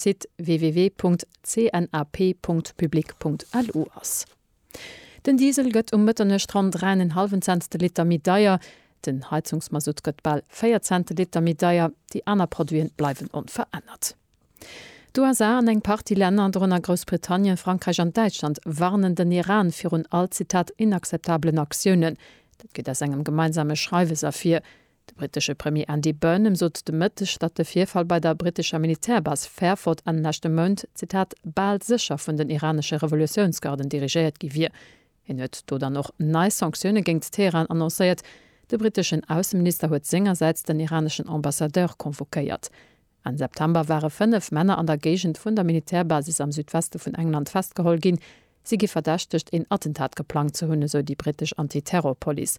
Site www.cnap.public.lu ass. Den Diesel gëtt um Mëtternuecht ronn 3 en hallwen Cents de Liter méi deier, den Heizungsmasutt gëtt bal 4 Cent de Liter méi deier, déi aner Produiten bleiwen onverännert. D'USA an eng Partie Länner, dorënner Groussbritannien, Frankräich an Däitschland, warnen den Iran virun all, Zitat, inakzeptabelen Aktiounen. Dat geet aus engem gemeinsame Schreiwes ervir. De brittesche Premier Andy Burnham sot de Mëtteg, datt de Virfall bei der brittescher Militärbase Fairford Enn leschte Mount, Zitat, bal sécher vun den iranesche Revolutiounsgarden dirigéiert gi wier. Hien huet do dann och nei Sanktioune géingt Teheran annoncéiert. De britteschen Ausseminister huet sengersäits den iraneschen Ambassadeur convoquéiert. Enn September ware fënnef Männer an der Géigend vun der Militärbasis am Südweste vun England festgeholl ginn. Si gi verdächtegt, een Attentat geplangt ze hunn, esou déi brittesch Anti-Terror-Police.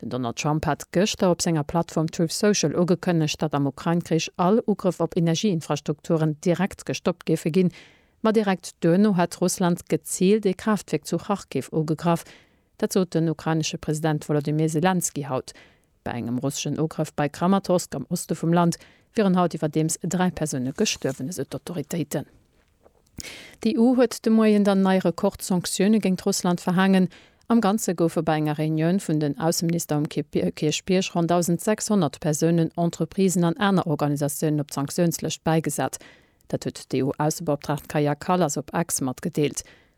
Den Donald Trump hat gëschter op senger Plattform Truth Social ugekënnegt, datt am Ukrain-Krich all Ugrëff op Energieinfrastrukturen direkt gestoppt géife ginn. Ma direkt duerno hätt Russland geziilt ee Kraaftwierk zu Kharkiv ugegraff. Dat sot den ukrainesche President Wolodymyr Selenskyj haut. Bei engem russeschen Ugrëff bei Kramatorsk am Oste vum Land wieren haut iwwerdeems dräi Persoune gestuerwen, esou d'Autoritéiten. D'EU huet de Moien dann nei Rekordsanktioune géint Russland verhaangen. Am Ganze goufe bei enger Reunioun vun den Ausseminister um Kierchbierg ronn 1.600 Persounen, Entreprisen an aner Organisatiounen op d'Sanktiounslëscht bäigesat. Dat huet d'EU-Aussebeoptraagt Kaja Kallas op X matgedeelt.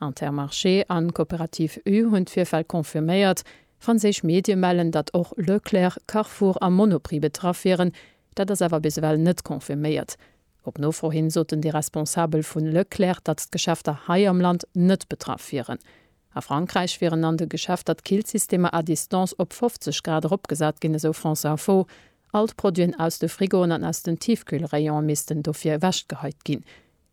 Intermarché an Coopérative U hunn d'Virfäll confirméiert. Franséisch Medie mellen, datt och Leclerc, Carrefour a Monoprix betraff wieren. Dat ass awer bis ewell net confirméiert. Op Nofro hin soten déi Responsabel vu Leclerc, datt d'Geschäfter hei am Land net betraff wieren. A Frankräich wieren an de Geschäfter d'Killsystemer à distance op 50 Grad eropgesat ginn, esou France Info. All d'Produiten aus de Frigoen an aus den Tiefkühlrayone missten dofir ewechgeheit ginn.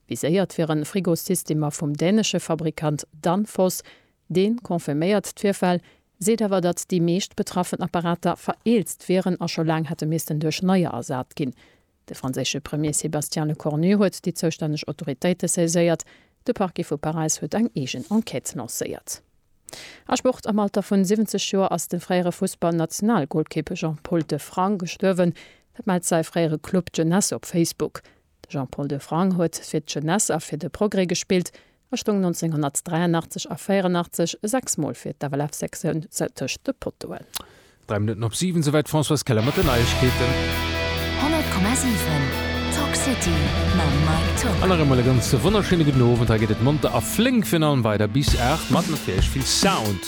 Viséiert wieren Frigosystemer vum dänesche Fabrikant Danfoss. Dee confirméiert d'Virfäll, seet awer, datt déi meescht betraffen Apparater vereelzt wieren a scho laang hätte missten duerch neier ersat ginn. De franséische Premier Sébastien Lecornu huet déi zoustänneg Autoritéite saiséiert. De Parquet vu Paräis huet eng eegen Enquête lancéiert. A Sport, Am Alter vun 70 Joer ass de fréiere Fussball-Nationalgolkipp Jean-Paul Defrang gestuerwen. Dat mellt säi fréiere Club Jeunesse op Facebook. De Jean-Paul Defrang huet fir d'Jeunesse a fir de Progrès gespillt a stoung 1983 a 84 sechs Mol fir d'FLF-Sektioun tëscht de Pottoen. Dräi Minutten op siwen, souwäit d'Françoise Keller mat den Neiegkeeten. 100,7 Talk City mam Mike Tock. An nach eemol e ganz wonnerschéine gudden Owend. Hei geet et monter a flénk virun allem weider bis aacht, mat natierlech vill Sound.